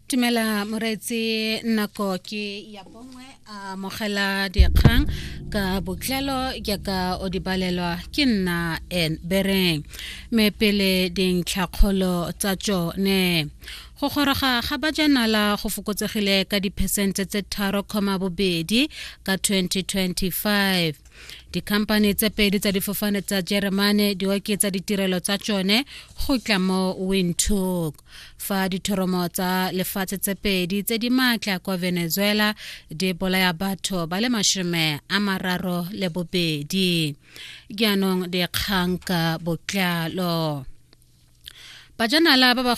Tumela Moretsi nako ke ya bongwe a mogela dikgang ka botlelo jaaka o di balelwa ke nna en bereng me pele dintlhakgolo tsa tsone go goroga ga bajanala go fokotsegile ka diphesente tse tharo comma bobedi ka 2025 dikhamphane tse pedi tsa difofane tsa jeremane di oketsa ditirelo tsa tsone go tla mo windhoek fa dithoromo tsa lefatshe tse pedi tse di maatla kwa venezuela di bolaya batho ba le mashome a mararo le bobedi jaanong dikgang ka botlalo bajanala ba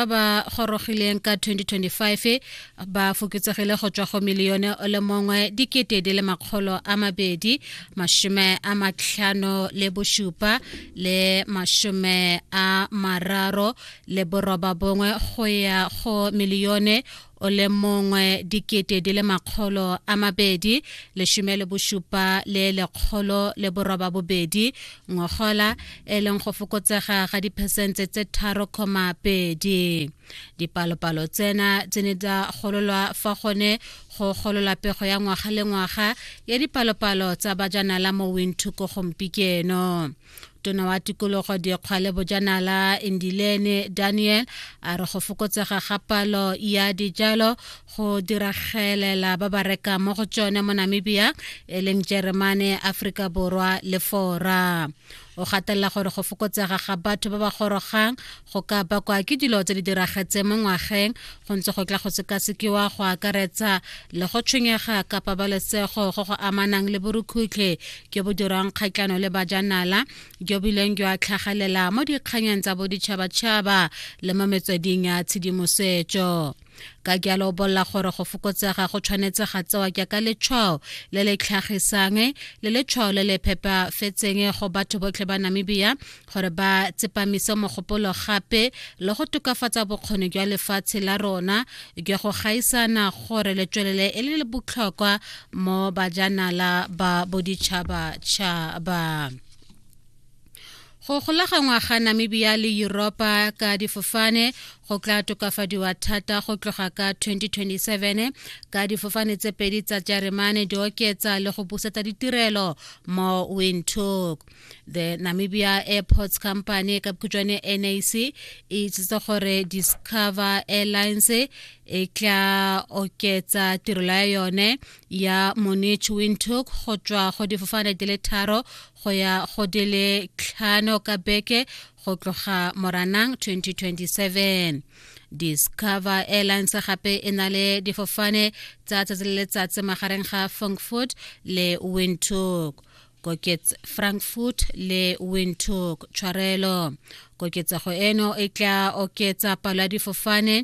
ba gorogileng ka 2025 ba foketsegile go tswa go milione o le mongwe dikete di le makgolo a mabedi mashome a matlhano le bosupa le mashome a mararo le boroba bongwe go ya go milione o le mongwe dikete di le makgolo a mabedi leshome le bosupa le lekgolo le boroba bobedi ngogola e leng go fokotsega ga diphesente tse tharo koma pedi dipalopalo tsena tse ne tsa gololwa fa gone go golola pego ya ngwaga le ngwaga ya dipalopalo tsa bajanala mo winthuko gompikeno tona wa tikologo dikgwale bojanala indilene daniel a re go fokotsega ga palo ya dijalo go diragelela ba ba rekang mo go tsone mo namibia e leng jeremane aforika borwa le fora o gatelela gore go fokotsega ga batho ba ba gorogang go ka bakwa ke dilo tse di diragetseng mo ngwageng go ntse go tla go sekasekiwa go akaretsa le go tshwenyega ka pabalesego go go amanang le borukhutlhe jo bo dirwang kgatlhano le bajanala jo bileng jwa tlhagalela mo dikganyeng tsa boditšhabatšhaba le mo metsweding ya tshedimosetso ka jalo o bolela gore go fokotsega go tshwanetse ga tsewa jaaka letshwao le le tlhagisang le letshwao le le phepafetseng go batho botlhe ba namibia gore ba tsepamise mogopolo gape le go tokafatsa bokgoni jwa lefatshe la rona jwa go gaisana gore le tswelele e le botlhokwa mo bajanala ba boditšhabatšhaba go golaganngwa ga namibia le yuropa ka difofane go tla tokafadiwa thata go tloga ka 2027 ka difofane tse pedi tsa jeremane di oketsa le go busetsa ditirelo mo windhoek the namibia airports company ka bokhutšwane nac e itsitse gore discover airlines e tla oketsa tirelo ya yone ya Munich Windhoek go tswa go difofane di le tharo go ya go di le tlhano ka beke go tloga Moranang 2027 discover airlines gape e na le difofane tsa tsatsi le letsatsi magareng ga frankfurt le windhoek kokets frankfurt le windhoek tshwarelo koketsego eno e tla oketsa palo ya difofane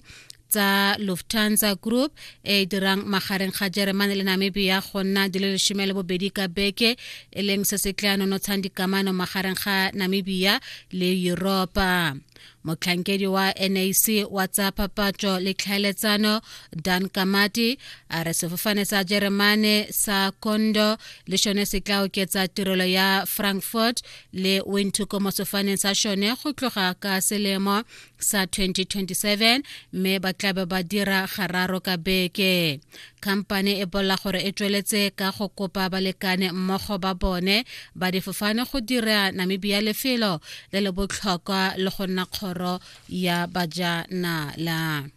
tsa lufthansa group e e dirang magareng ga jeremane le namibia go nna di le lesome le bobedi ka beke e leng se se tla nonotshang dikamano magareng ga namibia le europa motlhankedi wa nac wa tsa phapatšo le tlhaeletsano dan kamati a re sefofane sa jeremane sa kondo le šone se tla oketsa tirelo ya frankfurt le windhoek mo sefofaneng sa šone go tloga ka selemo sa 2027 mme ba tlabe ba dira gararo ka beke khamphane e bolela gore e tsweletse ka go kopa balekane mmogo ba bone ba difofane go dira namibia lefelo le le botlhokwa le go nna kgoro ya bajanala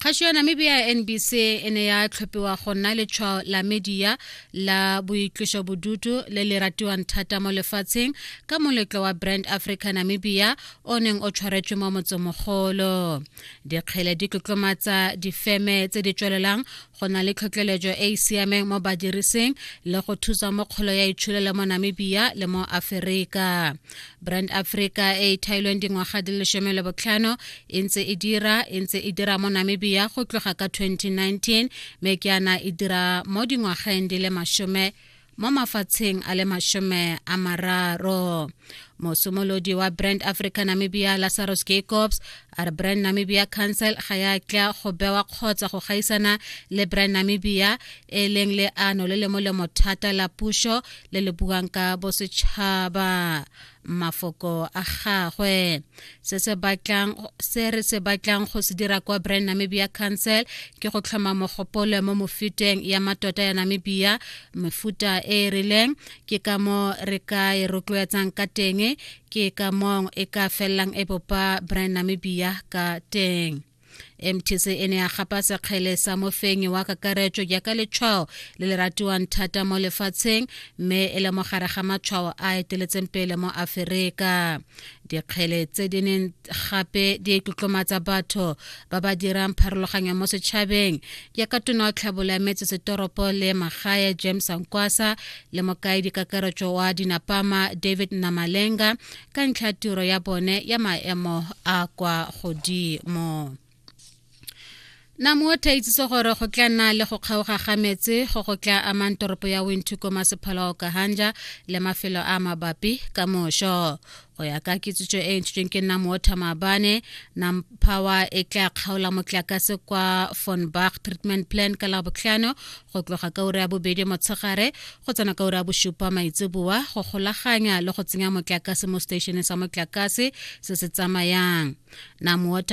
kgašo ya namibia ya nbc e ne ya tlhophiwa go nna letshwao la media la boitloso bodutu le le ratiwang thata mo lefatsheng ka moletlo wa brand africa namibia o neng o tshwaretswe mo motsemogolo dikgele di tlotlomatsa difeme tse di tswelelang go na le tlhotlheletso e e siameng mo badirising le go thusa mo kgolo ya itshulelo mo namibia le mo aferika brand africa e e thailweng dingwaga di lesome le botlhano e ntse e dira e ntse e dira mo namibia go tloga ka 2019 mme ke yana e dira mo dingwageng di le masome mo mafatsheng a le mashome a mararo mosimolodi wa brand africa namibia lazarus jacobs a re brand namibia council ga ya tla go bewa kgotsa go gaisana le brand namibia e leng le ano le le molemo thata la puso le le buang ka bosetšhaba mafoko a gagwe se se batlang se re se batlang go se dira kwa brand namibia council ke go tlhoma mogopolo mo mofuteng ya matota ya namibia mefuta e e rileng ke ka mo re ka e rotloetsang ka teng ke ka mong e ka felelang e bopa brand namibia ka teng mtc e ne ya gapa sekgele sa mofenyi wa kakaretso jaaka letshwao le le ratiwang thata mo lefatsheng mme e le mogare ga matshwao a eteletseng pele mo aferika dikgele tse di neng gape di tlotlomatsa batho ba ba dirang pharologanyo mo setšhabeng jaaka tona wa tlhabolo ya metsesetoropo le magae james ankwasa le mokaedi kakaretso wa dinapama david namalenga ka ntlha tiro ya bone ya maemo a kwa godimo namotha itsise gore go tla nna le go kgaoga ga metsi go go tla amang toropo ya winthu ko masephala o kahanja le mafelo a mabapi ka mošo go ya ka kitsitso e ntshitsweng ke nna mootha maabane nam power e tla kgaola motlakase kwa fonbach treatment plan ka labotlhano go tloga ka ura ya bobedi motshegare go tsena ka ura ya bosupa maitseboa go golaganya le go tsenya motlakase mo seteisheneng sa motlakase se se tsamayang namowater